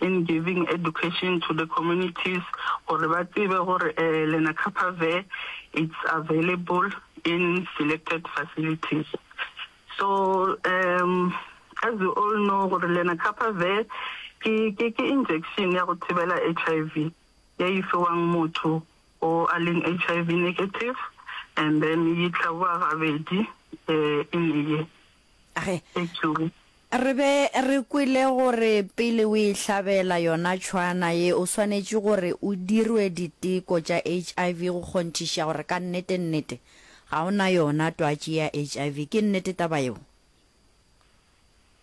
in giving education to the communities gore ba tsebe gore eh, lenacapavir it's available in selected facilities so um as you all know gore lenacapavir ke ke ke injection ya go thibela HIV ya e fiwang motho o a leng HIV negative and then e tlhaboa gabedi eh in a year Ge re be re kwele gore pele o ihlabela yona tšhwana ye o swanetše gore o dirwe diteko tša HIV go kgonthiša gore ka nnete-nnete ga o na yona twatši ya HIV. Ke nnete taba yeo?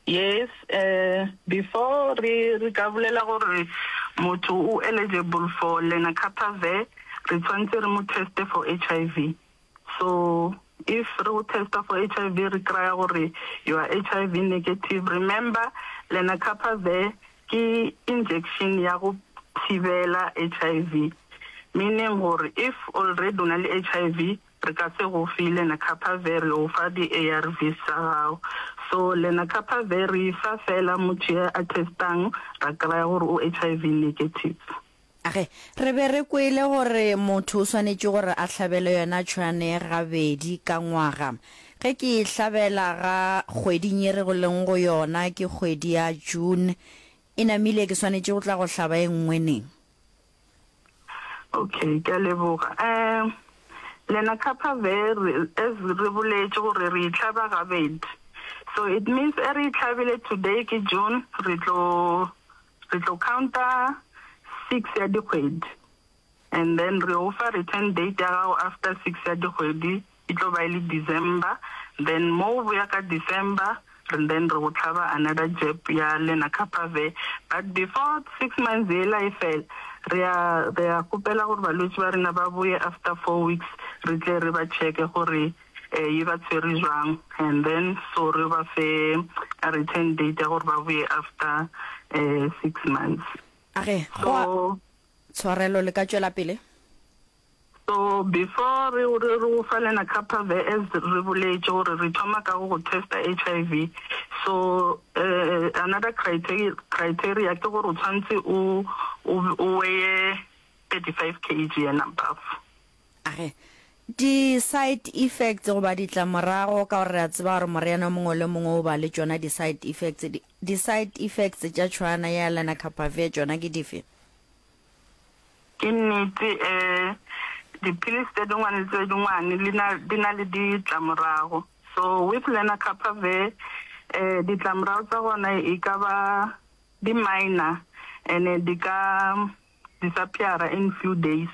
Yes, before re re ka bolela gore motho o eligible for lenacapavir re tshwanetse re mo teste for HIV. So if re go testa for HIV re kraya gore you are HIV negative, remember lenacapavir ke injection ya go thibela HIV, meaning gore if already o na le HIV re ka se go fe lenacapavir, re go fa di ARVs tsa gago. So lenacapavir re e fa fela motho ya a testang ra kraya gore o HIV negative. Ge re be re kwele gore motho o swanetše gore a hlabele yona tšhwane gabedi ka ngwaga, ge ke e hlabela ga kgweding ye re go leng go yona, ke kgwedi ya June e namile, ke swanetše go tla go hlaba e nngwe neng? Ok, ke a leboga. Um, lena Kappa Ve, re, as re boletše gore re e hlaba gabedi, so it means e re e hlabile today ke June, re tlo, Re tlo counta six ya dikgwedi and then re o fa return date ya gago after six ya dikgwedi e tlo ba e le December, then mo o boya ka December and then re go tlhaba another jab ya lenacapavir but before six months yela e fela re ya re ya kgopela gore balwetši ba rena ba boye after four weeks re tle re ba checke gore e ba tswere jwang and then so re ba fe a return date ya gore ba boye after um six months a ge go tshwarelo le ka tšwela pele so before re re re fa lena kappa vs re boletse gore re thoma ka go testa hiv so uh, another criteria criteria ke gore o tshwanetse o o weye 35 kg and above A re, Di-side effects goba ditlamorago, ka gore re a tseba gore moriana o mongwe le o mongwe o ba le tšona di-side effects. Di, di-side effects tša tšhwana ya lenacapavir tšona ke dife? Ke nnete, um dipilisi tše dingwe le tše dingwe di na, di na le ditlamorago. So with lenacapavir, um ditlamorago tša gona e ka ba di-minor and-e di ka disappear-a in few days.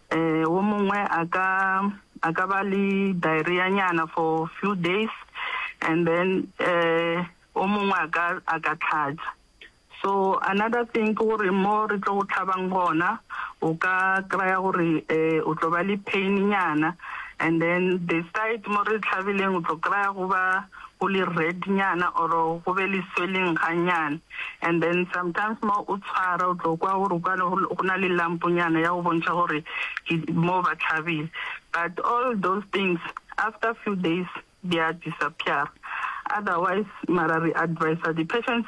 Eh, wo mongwe a ka a ka ba le diarrhea nyana for few days and then eh o mongwe a ka a ka tlhatsa so another thing ke gore mo re tlo go tlhabang gona o ka kry-a gore um o tlo ba le pain nyana and then the side mo re tlhabileng o tlo kry-a go ba go le red nyana or go be le swelling ga nyana and then sometimes mo o tshwara o tlo kwa gore kwane go na le lampo nyana ya go bontšha gore mo ba tlhabile but all those things after few days they are disappear otherwise mara re advisa di patients